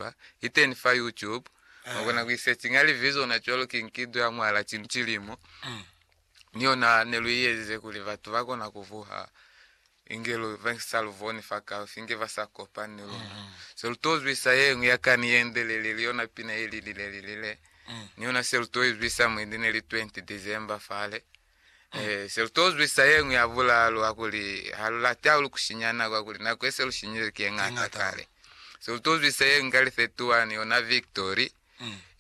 Newspaper, iteni fa YouTube, mwakona kuisechinga livi zona cwalo ki nkido ya mwala cinu cilimo, ni yona neluiezize kuli batu bakona kuvuha inge lu vengisa luvoni fa kaufi, inge basa kopani ni luna. Se lu to zwisa yeñwi ya kani yendelele ili yona pina yelilile lilile, ni yona se lu to izwisa mwendi neli 20 December fale. Se lu t'o zwisa ye ñwi ya bulalu ha kuli ha lu lati hahulu ku sinya nako ha kuli nako ye se lu sinyile ki ye ñata kale. Se lu t'o zwisa ye ñwi ka li 31 yona Victory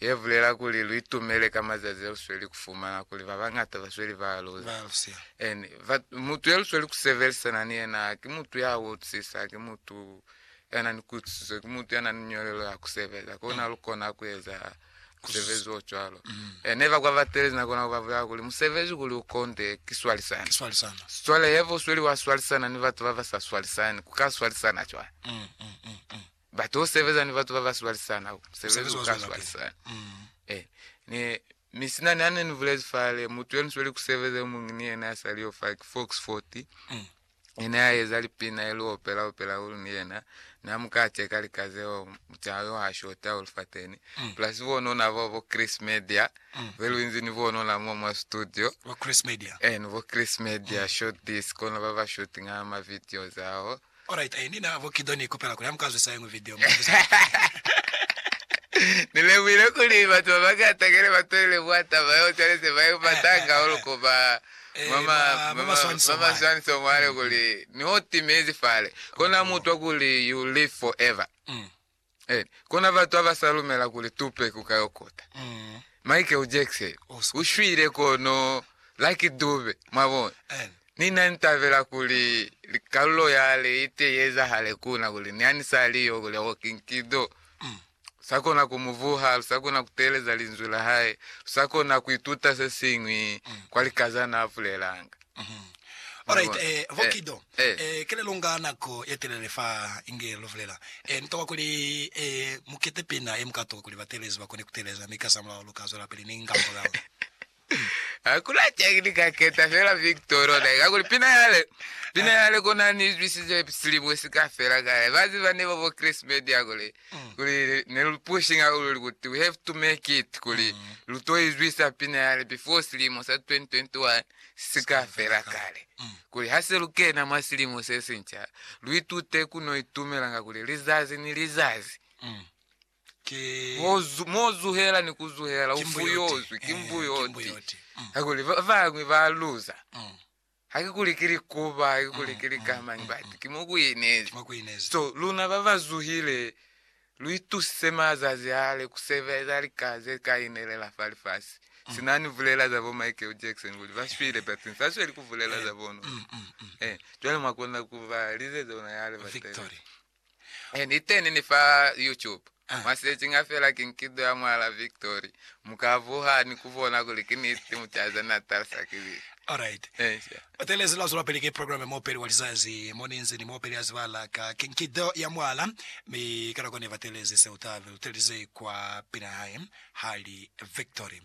ye bulela kuli lu itumele ka mazazi a lu sweli ku fumana kuli ba bañata ba sweli ba luza. Mutu ye lu sweli ku sebelisana ni yena ki mutu ya utusisa, ki mutu ya na ni kuitusiso, ki mutu ya na ni ñolelo ya ku sebeza, kono ha lu kona ku eza musebezi o cwalo. Eh, ne ba kwa batelezi nako nako ba bulela kuli musebezi kuli u konde ki swalisana. Ki swalisana. Cwale heba u sweli wa swalisana ni batu ba ba sa swalisani, ku ka swalisana cwani? Mm, mm, mm, mm. Batu u sebeza ni batu ba ba swalisana, musebezi u ka swalisana. Mm. Eh, ni misinani ha ne ni bulezi fale, mutu ye ni sweli ku sebeza yo muñi ni yena ya saliyo fale ki Fox Fort. Mm. Ni ne a eza lipina e lu opela opela hahulu ni yena. Ne a mu kate ka lika zeo mucaha yo ha shota hahulu fateni. Plus bonona bao bo Chris Media be lu inzi ni bonona mo mwa studio. Bo Chris Media. Eh ni bo Chris Media short this kona ba ba shooting a ma videos ao. Alright eh ni na bo Kido ni ikupela kuli ha mu ka zwisa yeñwi video mu buze hape. Ni lemuhile kuli batu ba bangata kene ba toile mwa taba yeo cwale se ba i patanga hahulu ku ba Mwa maswaniso mwali kuli, Ni o timezi fale, kona mutwa kuli you live forever. Kona batu abasa lumela kuli Tupac uka yo kota. Michael Jackson u shwile kono Lucky Dube, mwabona. Ni na ni tabela kuli kalulo yale ite ye ezahale kuna kuli ni ha ni sa li yo kuli, oh, King Kido, Lusakona ku mu vuha, lusakona ku teeleza linzwi la hae, lusakona ku ituta se siñwi kwa lika za n'a bulelanga. Alright, eh, Vokido, eh, ki le lu nga nako ye telele fa inge lu bulela, eh, ni tokwa kuli, eh, mu kete pina ye mu ka tokwa kuli bateelezi ba kone ku teeleza, mi kasamulaho lu ka zwelapili ni ngambulao. Ha ku na cani ni ka keta fela Victor lona eka kuli pina yale, pina yale kona ni izwisize silimo si ka fela ka yale. Ba ziba ne ba bo Chris Media kuli, kuli ne lu pushing hahulu kuti we have to make it kuli lu to izwisa pina yale before silimo sa 2021 si ka fela kale. Kuli ha se lu kena mwa silimo se sinca, lu itute ku no itumela ka kuli lizazi ni lizazi, Mo zuhela ni ku zuhela u fuyozwi ki mbuyoti kakuli ba bañwi ba luza. Hakikuli ki likuba, hakikuli ki likamañi, but ki mo ku inezi. So, luna ba ba zuhile, lu itusise mazazi ale ku sebeza lika ze ka inelela fa lifasi. Sina ni bulela za bo Michael Jackson kuli ba shwile but ni sa sweli ku bulela za bona. Cwale mwa kona ku ba lizeza ona ya le ba tele. Niteni ni fa YouTube mwa searchinga fela Kinkido ya Mwala Victory, mu ka vuha ni ku bona kuli ki niti mutazi ne a talisa ki Bibi. Alright. Encia. U telezi lwa zwelapili ki program ya Muopeli wa Lizazi, mo ni nzi ni muopeli ya zibala ka Kinkido ya Mwala, mi ka nako ne ba telezi se u tabe, u telize kwa pina ya hae, hali Victory.